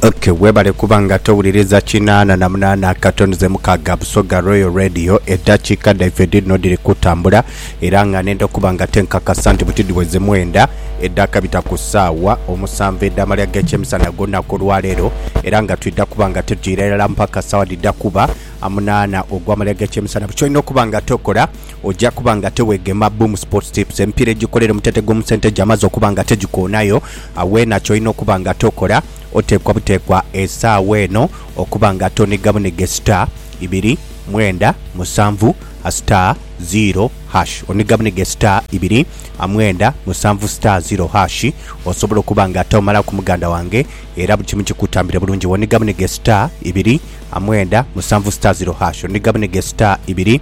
Okay, webale kuba nga towuliriza kinaana na munaana akatonize mukaaga Busoga Royal Radio eddakiika dhaife dhino dhiri kutambula era nga nenda okuba nga tenkakasa nti buti dhiweze mwenda edhakabita ku ssaawa omusanvu edh'amalya g'ekyemisana ag'olunaku olwaleero era nga twidha kuba nga tujiira irala mpaka ssaawa dhidha kuba amunaana ogw'amalya g'ekyemisana buli kyolina okuba nga tokola Oja kuba nga tewegema Boom Sports Tips. Emipiira ejikolera omuteete gw'omu sente gyamaze okuba nga tegikoonayo, agho weena ky'olina okuba nga tokola, oteekwa buteekwa esaawa eno okuba nga toniga bunige star, ibiri, mwenda, musanvu, star, ziiro, hash. Oniga bunige star, ibiri, mwenda, musanvu, star, ziiro, hash osobola okuba nga tomalaku muganda wange era buli kimu kikutambire bulungi woniga bunige star, ibiri, mwenda, musanvu, star, ziiro, hash. Oniga bunige star, ibiri.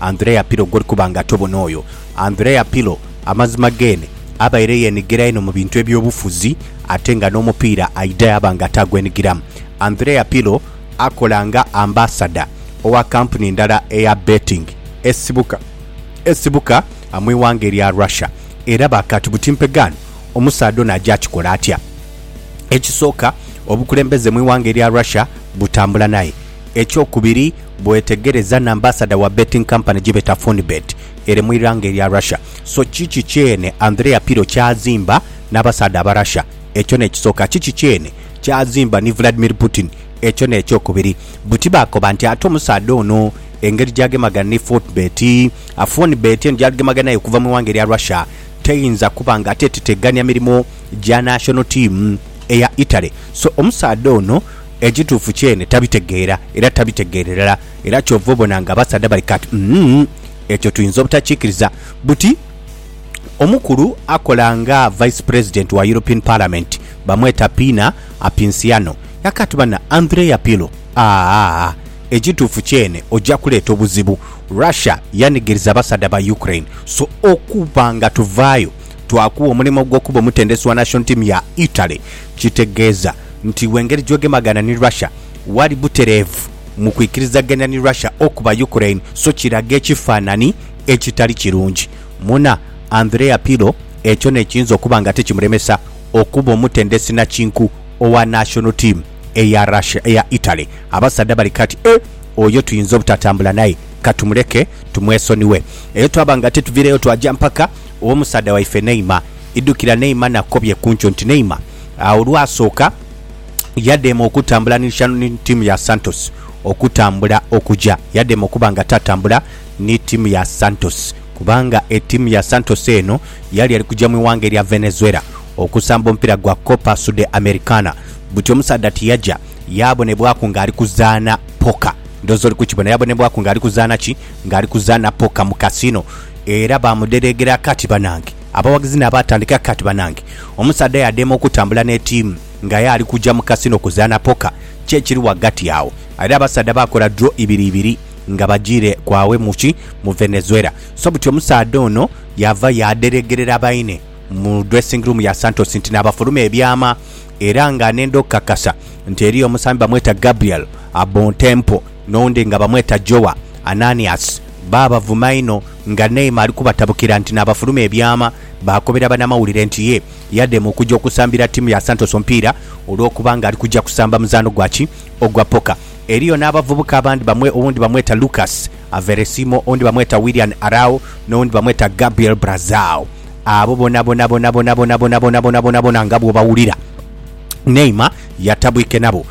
Andrea Pirlo gw'oli kuba nga tobona oyo. Andrea Pirlo amazima geene abaire yeenigira inho mu bintu eby'obufuzi ate nga n'omupiira aidha yaaba nga taagwenigiramu. Andrea Pirlo akola nga ambasada owa kampuni ndala eya betting esibuka esibuka mu ighanga erya Russia. Era baakaati buti mpegaano omusaadha ono aja kikola atya? Ekisooka, obukulembeze mu ighanga erya Russia butambula naye. Ekyokubiri, bwetegereza na ambasada wa betting company gyebeta Fonibet ere mu ighanga erya Russia. So kiki kyene Andrea Pirlo kyazimba nabasaadha Abarussia? Ekyo nekisoka. Kiki kyene kyazimba ni Vladimir Putin? Ekyo nekyokubiri. Buti bakoba nti ate omusaadha ono engeri gyagemagana ni Fortbet, a Fonibet eno gyaligemaganayo okuva mu ighanga erya Russia teyinza kuba nga ate tetegania mirimo gya national team eya Italy. So omusaadha ono. Ekituufu kyene tabitegeera era tabitegeera irala era kyova obona nga abasaadha bali kati umm ekyo tuyinza obutakikiriza buti omukulu akola nga Vice President wa European Parliament bamweta Pina Apinsiano yakati bana Andrea Pirlo aah ekituufu kyene oja kuleeta obuzibu Russia yanigiriza abasaadha ba Ukraine so okuba nga tuvaayo twakuwa omulimo gwokuba omutendesi wa national team ya Italy Kitegeeza nti w'engeri gy'ogemagana ni Russia, wali butereevu mu kwikirizagania ni Russia okuba Ukraine, so kiraga ekifaanani ekitali kirungi. Muna Andrea Pirro ekyo n'ekiyinza okuba nga tikimuremesa okuba omutendesi nakinku owa national team eya Russia, eya Italy. Abasaadha bali kati, Eh, oyo tuyinza obutatambula naye, katumuleke tumwesonighe. Eyo twaba nga tituviireyo twaja mpaka ew'omusaadha waife Neymar. Idhukira Neymar nakobye kunkyo nti Neymar olwasooka yadheema okutambula ni tiimu ya Santos okutambula okuja yadheema okuba nga tatambula ni tiimu ya Santos kubanga etiimu ya Santos eno yali eri kuja mu ighanga erya Venezuela okusamba omupiira gwa Copa Sudamericana buti omusaadha tiyaja yabonebwaku nga ali kuzaana poker ndhooza oli kukibona yabonebwaku nga ali kuzaana ki? Nga ali kuzaana poker mu casino era baamudereegera akati banange. Abawagizi naabo atandika kati, Banange, omusaadha yadheema okutambula n'etiimu nga aye ali kuja mu kasino kuzaana poka. Ki ekiri ghagati agho? Aidha abasaadha baakola draw ibiri ibiri nga bajiire kwaghe mu ki? Mu Venezuela. So buti omusaadha ono yaava yaadheregerera baine mu dressing room ya Santos nti naabafuluma ebyama era nga n'endha okukakasa nti eriyo omusambi bamweta Gabriel Abontempo. N'oundi nga bamweta Jowa, Ananias, baabavuma inho nga Neema ali kubatabukira nti naabafuluma ebyama. Baakobera banamawulire nti ye yadema okuja okusambira ttiimu ya Santos omupiira olw'okuba ng'ali kuja kusamba muzaano gwa ki? Ogwa poka. Eriyo n'abavubuka abandi bamwe owundi bamweta Lucas Averesimo, owundi bamweta Willian Arao, n'owundi bamweta Gabriel Brazao. Abo bonabonabonabonabonabonabonabonabonabona nga bw'obawulira, Neema yatabwike nabo.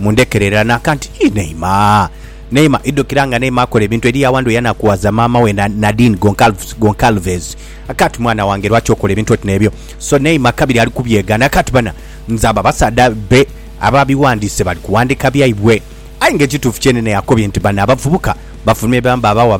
Mundhekere era nakanti ii Neema Neema idhukira nga Neema akola ebintu eriyo awandhu eyanakuwaza maama we na Nadine Goncalves Goncalves akanti mwana wange lwaki okola ebintu oti nebyo so Neema kabiri ali kubyegana akanti bana nze abo abasaadha be aba biwandiise bali kuwandika byaibwe aye nga ekituufu kyenene yakobye nti bano abavubuka bafulumye bamba abawa